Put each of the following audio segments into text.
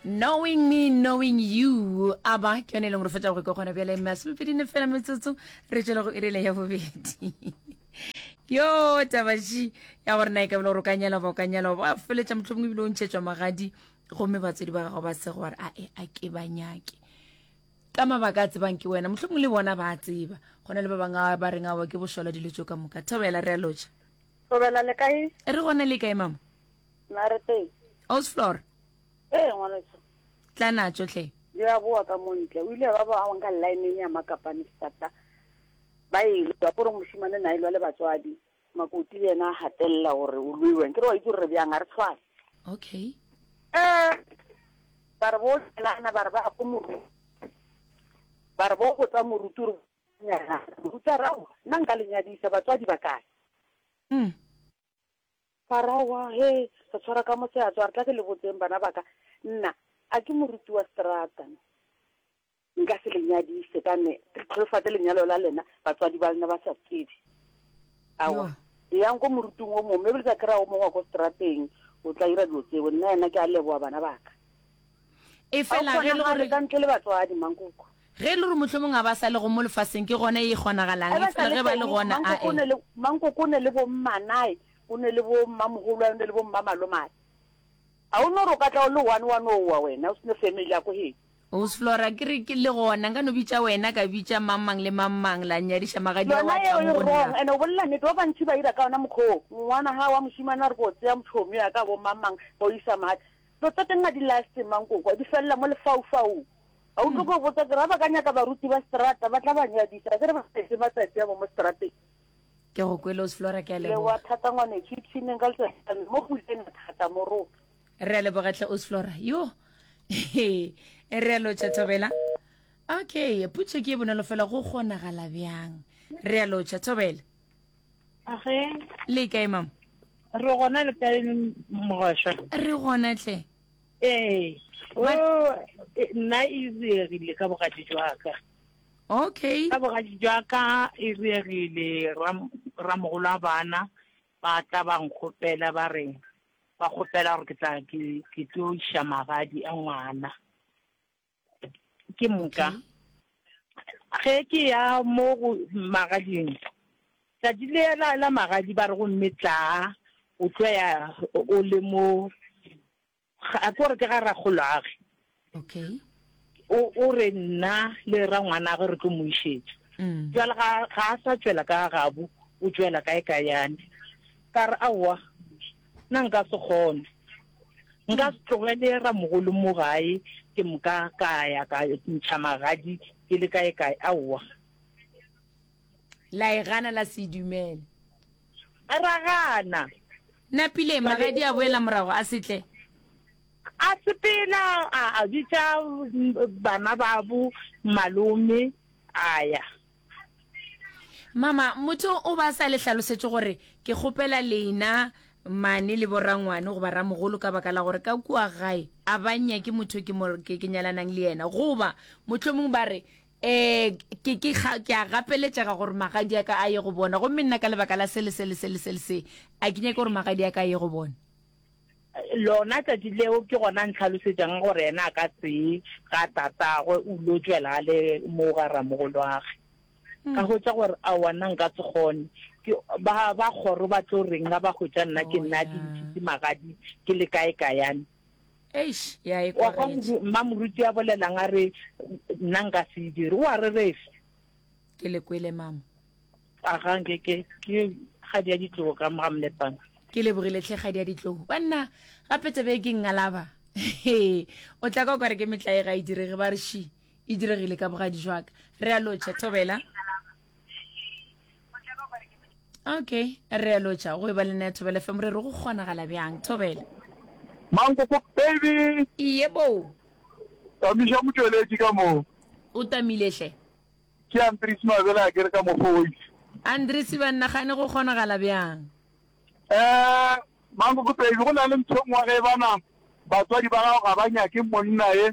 knowing me knowing you a ba ke yone e leng gore fetsa go ke gona bjale masomepedi ne fela metsotso re tswele go irele ya bobedi yo tabaši ya gore na e ka bile gore o ka nyala ba o ka nyala ba feletša motlho mongwe ebile o ntšhetswa magadi gomme batswadi ba gago ba se gore a e a ke ba nyake ka mabaka a tsebang ke wena motlho mongwe le bona ba a tseba go na le ba bangwe ba reng ao ke bošola dilo tso ka moka thobela re a lotšha thobela le kae re gona le kae mama Narete. Osflor. Ee, ngwaneso. Tla na tšohle. Di a boa ka mo ntle. O ile ba ba awang ka line ya makapane sata. Ba e lwa gore moshimane na e lwa le batswadi. Makoti le yena a hatelela gore o lweweng. Ke re wa itse gore re bjang, a re tshwane. Okay. Eh, ba re bo tselana ba re ba go moru. Ba re bo go tsa moruti re nyana. Moruti a re ao, nna nka le nyadisa batswadi ba kae? Mm. Faraoa, He, re tshwara ka mo seatso, a re tla ke le botseng, bana ba ka, nna a ke moruti wa seterata. Nka se le nyadise ka ne ke tlholofatse lenyalo la lena batswadi ba lena ba sa tsebe. Aowa, eyang ko moruting o mongwe, mme ebile tla kry-a o mongwe wa ko seterateng o tla ira dilo tseo. Nna ena ke a leboga, bana ba ka. e fela ge le gore ka ntle le batswadi mankoko ge le gore mohlomong a ba sa le go mo lefaseng ke gona e kgonagalang e fela ge ba le gona a e mankoko o ne le bo mmanae o ne le bo mmamogolo o ne le bo mmamalomai a o no re o ka tla o le one one owa wena o sene family ya ko hee Ose Flora ke re ke le gona nka no bitša wena ka bitša mang mang le mang mang la nyadiša magadi wa tla mo gonna ene o bolela nnete ba bantši ba ira ka yona mokgoo ngwana ga wa mošimana re ko tseya motšhomi ya ka bo mang mang ba o isa mati Tota ke nna di laya semang ko kwa, di felela mo lefaufaung. A utlwe ko botsa ke re ba ka nyaka baruti ba seterata ba tla ba nyadisa, ke re ba etse matsatsi a bo mo seterateng. Ke go kwele Osflora, ke a leboga. Lewa thata ngwanecho, ipshineng ka letsatsi mo go ile thata mo rona. Re a leboga tlhe Osflora. Yo. E re a lotša Thobela. Okay, putso ke e bonolo fela go kgonagala bjang. Re a lotša Thobela. Age. Le kae mama? Re gona le kae mogosha? Re gona tle. Ee. O e, nna e riegile ka bogadi jwaka. Okay. Ka bogadi jwaka e riegile ramogolo a bana ba tla ba nkgopela ba re ba kgopela gore ke tla ke tlo iša magadi a ngwana. ke moka ge ke ya mo go magading tšatši le la la magadi ba re gomme tla o tlo ya o le mo a ke gore ke ga rakgolwage okay o re nna le ra ngwana ge re tlo mo išetša mm. jale ga a sa tšwela ka gabo o tšwela kae ka yane ka re aowa Na nka se kgone? Nka se tlogele ramogolo mo gae ke moka ka ya ka ntšha magadi ke le kae kae? Aowa. La e gana la se dumele. Ra gana. Napile magadi a boela morago a se tle. A sepela a bitša bana babo malome a ya. Mama, motho o ba sa le hlalosetše gore ke kgopela lena mane le borangwane goba ramogolo ka baka la gore ka kua gae a ba nyake motho ke mo ke ke nyalanang le yena goba mohlomong ba re eh ke ke ga ke a gapeletšega gore magadi a ka a ye go bona gomme nna ka lebaka la se le se le se le se le se a ke nyake gore magadi a ka a ye go bona. Lona tšatši leo ke gona a ntlhalosetšang gore yena a ka se ye ga tatagwe o lo tšwela le moo ga ramogolwage. Ka hwetša gore aowa nna nka se kgone. Ke ba ba kgoro ba tlo reng ga ba hwetša nna ke nna di ntšhitse magadi ke le kae kayane. Eish ya e Wa kwa kwagetše. moru- mma moruti a bolelang a re nna nka se e dire o a rerefe. Ke le kwele mama. a ga nke ke ke ga di a ditlogo ka mo ga mlepana ke lebogile tlhe ga di a ditlogo banna gape tsebe ke ngalaba o tla ka kware ke metlae ga e direge ba re shi e diregile ka bogadi jwaka re a lotšha thobela okay re a lotšha go e ba le nna ya thobela fm re re go kgonagala bjang thobela mankoko baby iye boo tamiša motšweletši ka moo o tamilehle Ke Andries Mabele a kere ka mokgwa o itše. Andries, Ba nagane go kgonagala bjang? Ee, Mankoko Baby, go na le ntho nngwe ge e bana batswadi ba gago ga ba nyake monna ye,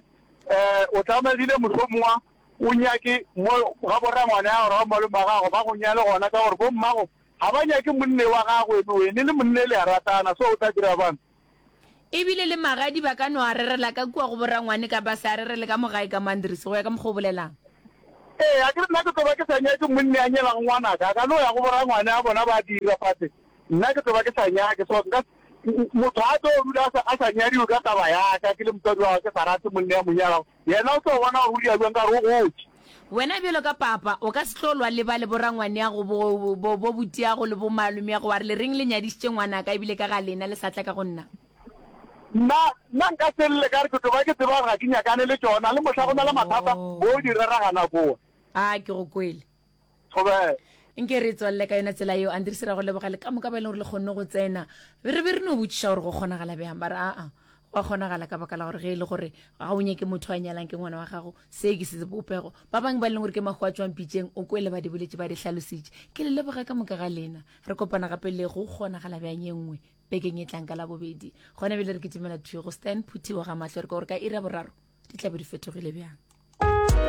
ee, o tlamegile mohlomongwa o nyake mo ga borangwane ya gago ga malome wa gago ba go nyale gona ka gore bommago ga ba nyake monna wa gago ebe wene le monna e le ya ratana so o tla dira bjang? E bile le magadi ba ka no a rerela ka kua go borangwane ka ba se a rerele ka mo gae ka mo Andries, go ya ka mokgwa o bolelang. Ee, a ke re nna ke tlo ba ke sa nyake monni a nyelang ngwanaka, a ka no ya go borangwane a bona ba dira fase, nna ke tlo ba ke sa nyake. So nka se, motho a tlo rula a sa nyadiwe ka taba ya ka, ke le motswadi wa gagwe, ke sa rate monni a mo nyalago, Yena o tlo bona gore o dira bjang ka gore o gotše. Wena bjalo ka papa, o ka se tlo lwa le ba le borangwaneago, bo, bo, bo boteago le bomalomeago, wa re, Le reng le nyadišitše ngwanaka, e bile ka ga lena le sa tla ka go nna? Nna, nna nka se lle ka re ke toba, ke tseba gore ga ke nyakane le tšona, le mohla go na le mathata, bo o di rera gana kua. A ke go kwele. nke re tswalele ka yona tsela eo andiri se ra go leboga le ka moka ba e leng gore le kgonne go tsena re be re no botšiša gore go kgonagala bjang ba re aa go a kgonagala ka baka la gore ge e le gore ga o nyake motho a nyalang ke ngwana wa gago se ke se bopego ba bangwe ba e leng gore ke mago a tswang pitšeng o kwele ba di boletše ba di hlalositše ke le leboga ka moka ga lena re kopana gape le go kgonagala bjang ye nngwe bekeng e tlang ka la bobedi gona bjale re ke tumela thuyo go stan phuthiwa ga mahlo re ka gore ka ira boraro di tlabe di fetogile bjang